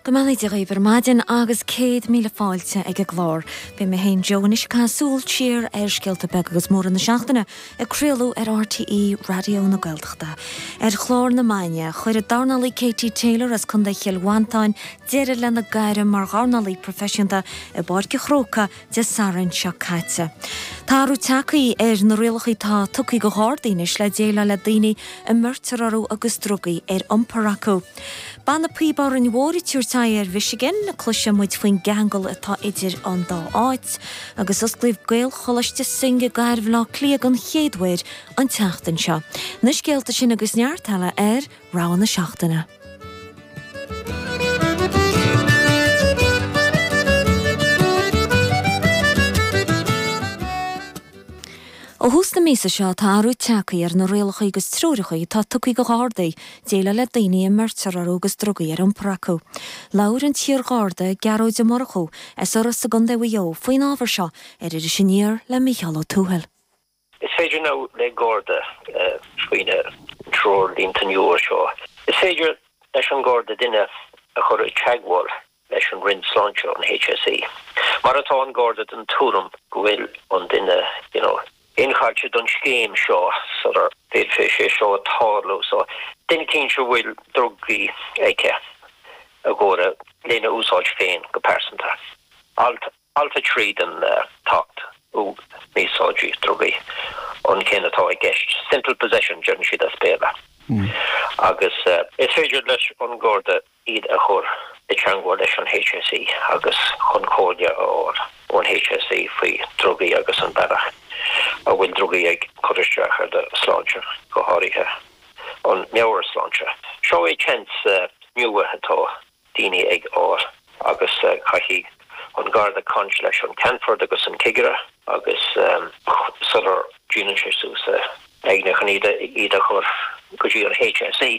Go mbeannaí Dia dhaoibh ar maidin agus céad míle fáilte ag an gclár. Beidh mé féin Joe anois ag caitheamh súil siar ar scéalta beaga agus móra na seachtaine ag craoladh ar RTÉ Raidió na Gaeltachta. Ar chlár na maidine, chuir an dornálaí Katie Taylor as contae Chill Mhantáin deireadh lena gairm mar dhornálaí proifisiúnta i bPáirc an Chrócaigh Dé Sathairn seo caite. Tá athrú teagthaí ar na rialacha atá tugtha do Ghardaí anois le déileáil le daoine a mbeirtear orthu agus drugaí ar iompar acu. Banna píob Árainn Mhór ag tabhairt aghaidh ar Mhichigan, cloisfidh muid faoin gceangal atá idir an dá áit, agus osclaíodh Gaelcholáiste Synge i gCathair Bhleá Cliath don chéad uair an tseachtain seo. Na scéalta sin agus neart eile ar. rogha na seachtaine. Ó thús na míosa seo tá athrú teagthaí ar na rialacha agus treoracha atá tugtha do Ghardaí déileáil le daoine a mbeirtear orthu agus drugaí ar iompar acu. Labhair an t-iar-Gharda, Gearóid Ó Murchú, as Iorras i gContae Mhaigh Eo faoin ábhar seo ar Iris Aniar le Mícheál Ó Tuathail. Is féidir now le Garda faoi na treoirlínte nua seo. Is féidir leis an Garda duine a chur i teagmháil leis an Roinn Sláinte an HSE má tá an Garda den tuairim go bhfuil an duine you know incháilithe don scéim seo sula bhféadfeadh sé seo tarlú. So duine éicint a bhfuil drugaí aici i gcomhair lena úsáid féin go pearsanta. Alt a. Alt 3 den tAcht um Mí-Úsáid Drugaí, an ceann atá i gceist, simple possession deireann siad as Béarla, agus is féidir leis an Garda iad a chur i dteangmháil leis an HSE agus chun comhairle a fháil ón HSE faoi dhrugaí agus an bealach a bhfuil drugaí ag cur isteach ar do shláinte, go háirithe an meabhairshláinte. Seo é seans nua atá. daoine ag fáil. agus caithfidh an garda caint leis an ceannfort agus an cigire agus sula ndéanann sé suas a intinn iad a chur go dtí an HSE.